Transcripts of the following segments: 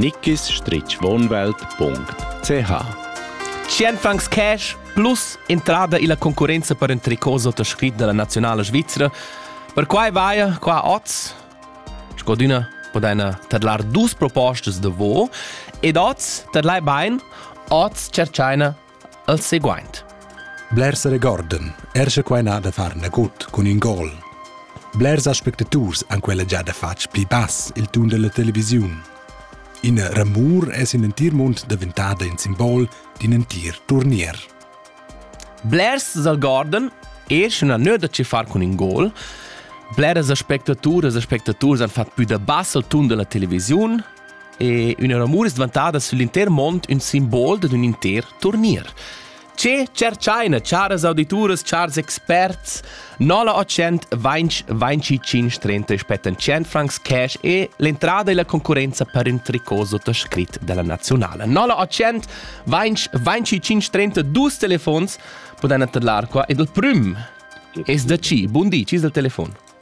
nickisstrichwohnwelt.ch Ci èn fancs cash plus entrada illa concurrenza per ün tricot sottoscrit da la nazionala svizra. Perquai vaia qua oz, scodüna podaina tadlar dus propostas da vo ed oz tadlai bain, oz tscherchaina al seguaint. Blers regorden, er sche quai n'ha da far nagut cun in gol. Blers aspectaturs han quella già da fatg pli bass il tun della televisiun. In ramur es in entir mund daventada in simbol d'in entir turnier. Blers regorden e sche na nöda ci far cun in gol, bleras aspectaturas e aspectaturs han fatg pü da bass al tun della televisiun, e üna ramur es dvantada süll'inter mond ün simbol dad ün inter turnier. Ce tscherchaina, charas audituras, chars experts, 900 vainch 25 30 spettan 100 francs cash e l'entrada e la concurenza per ün tricot sottoscrit dalla nazionale. 900 vainch 25 30 dus telefons podan atterlar qua ed il prüm es da ci. Buon di, ci del telefon.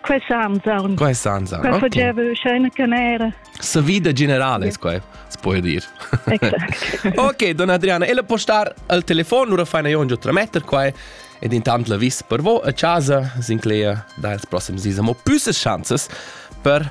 Quai sa anzarn. Quai sa anzarn. Quai faceva scena canera. Sa vida generale, yeah. quai, si può dir. Exact. ok, donna Adriana, ella può star al telefono, ora fai io un giù trametter qua ed intant la vis per vo a casa, sinclair da ils prossimi dis. Ma più chanzas per